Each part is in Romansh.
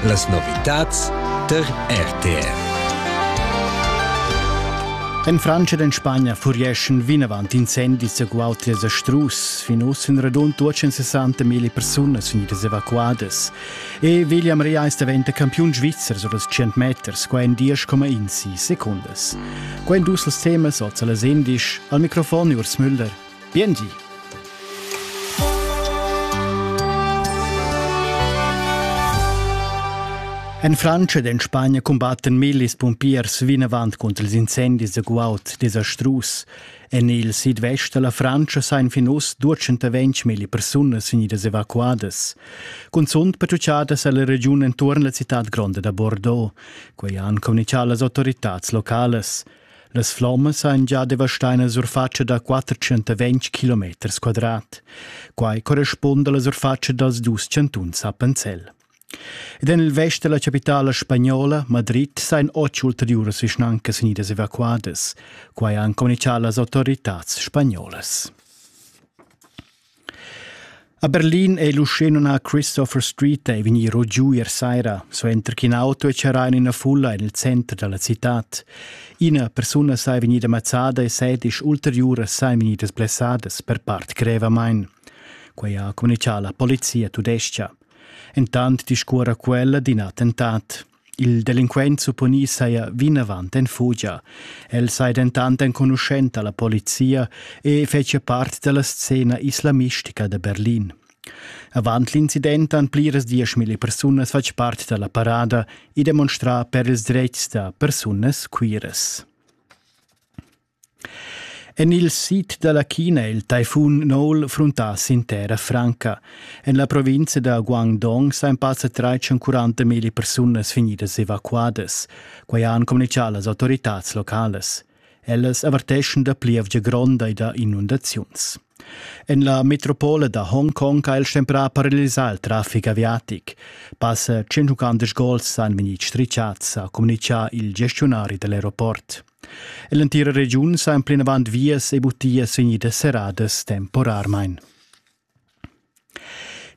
Las novitads tar RTR. En Frantscha ed en Spagna furieschan vinavant incendis egual a strus. Fin uss sun radund 260 mila persunas vegnidas evacuadas. E William Reis daventa campiun svizzer sur els 100 meters, qua en 10,1 secondas. Quai dus els temas oz a las 11. Al microfon Urs Müller. Biengi! En Frantscha ed en Spagna cumbattan millis pumpiers vinavant cunter ils incendis da guaud desastrus. En il sidvest da la Frantscha sain fin uss 220 milli persunas vegnidas evacuadas. Cunzunt patrugiadas è la regiun enturn la citad gronda da Bordeaux. Quai han communitgà las autoritads localas. Las flommas ein gia devastai nella surfatscha da 420 km quadrat. Quai correspunda alla surfatscha dals dus chantuns Appenzell. Ed en il vest della capitala spagnola, Madrid, sein otg ulteriuras vischnancas vegnidas evacuadas. Quai han communicà las autoritats spagnolas. A Berlin ei l'uschenumnà Christopher Street ei vegniro giu ier saira, suenter ch'in auto ei charrau en ina fulla en il center dalla citad. Ina persuna sei vegnida mazzada e sedisch ulteriuras sein vegnidas blessadas per part grevamain. Quei ha communicau la polizia tudescha. Entant discuora quella d'in attentat. Il delinquent supponi saja vinavant en fugia. El sai dentant enconuschenta la polizia e fetschia part della scena islamistica de Berlin. Avant l'incident han pliras dieschmilli persunas fatg part della parada e demonstrà per ils dretgs da persunas queeras. En il sid da la China è il taifun Noul fruntà sin terra franca. En la provinza da Guangdong sain passa 340 mila persunas vegnidas evacuadas. Quai han communitgà las autoritads localas. Ellas averteschan da plievgia gronda e da inundaziuns. En la metropola da Hongkong ha il stemprà paralisà il traffic aviatic. Passa 150 gols han vegnì strichats, ha communitgà il gestionari da l'aeroport. L'entira regiun sa en plinavant vias e butias vegnidas serradas temporarmain.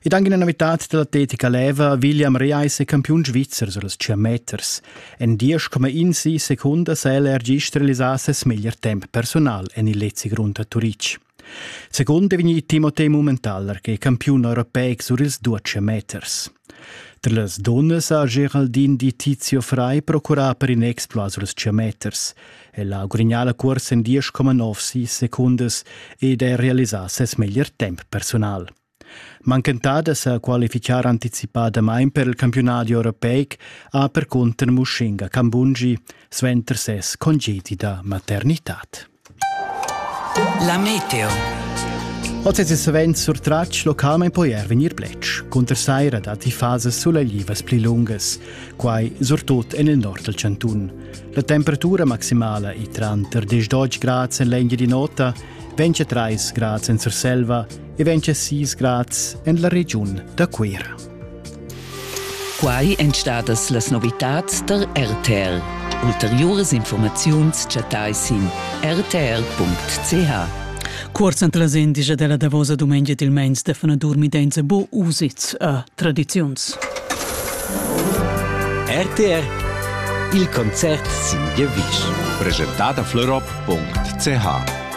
Ed anche una novità dell'atletica leva William Reis è campiun svizzer sur las 100 meters. En 10,1 secondas è l'ergist realisà ses meglier temp personal en il lezzi grund a Turic. Secund è vegnì Timothée Mummentaler che è campiun europeic sur ils duax meters. Tra las dunnas ha Geraldin di Tizio Frei procurà per in exploit sur ils meters. El ha gudagnà la cursa en 10,9 secondas ed ha realisà ses meglier temp personal. Manchentadas sa qualifichar anticipadamain per il campiunadi europeic ha percunter Mushinga Kambungi suenter ses congedi da maternitad. La meteo. Oz è savens surtratg localmain poi er vegnir bletsch. Cunter saira datti fasas sulaglivas pli lungas, quai surtut en il nord dal chantun. La temperatura maximala è tranter 10 grads en l'Engiadin'Ota, 23 grads en Surselva e vegn sis grads en la regiun da Cuira. Quai èn stadas las novitads tar RTL. Ulteriuras informaziuns chattai sin rtl.ch. Cuorz ant las indigia della davosa dumengia dil meins de fana dormidenza bo usits a tradiziuns. RTR Il concert sin Gewisch. Presentada florop.ch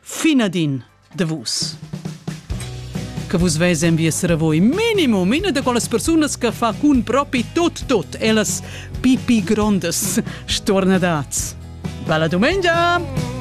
Finadin de vus che vus veis en vies ravoi minimum ina de quelles persunas che fa cun propi tot tot ellas pipi grondas stornadats. Bella dumengia!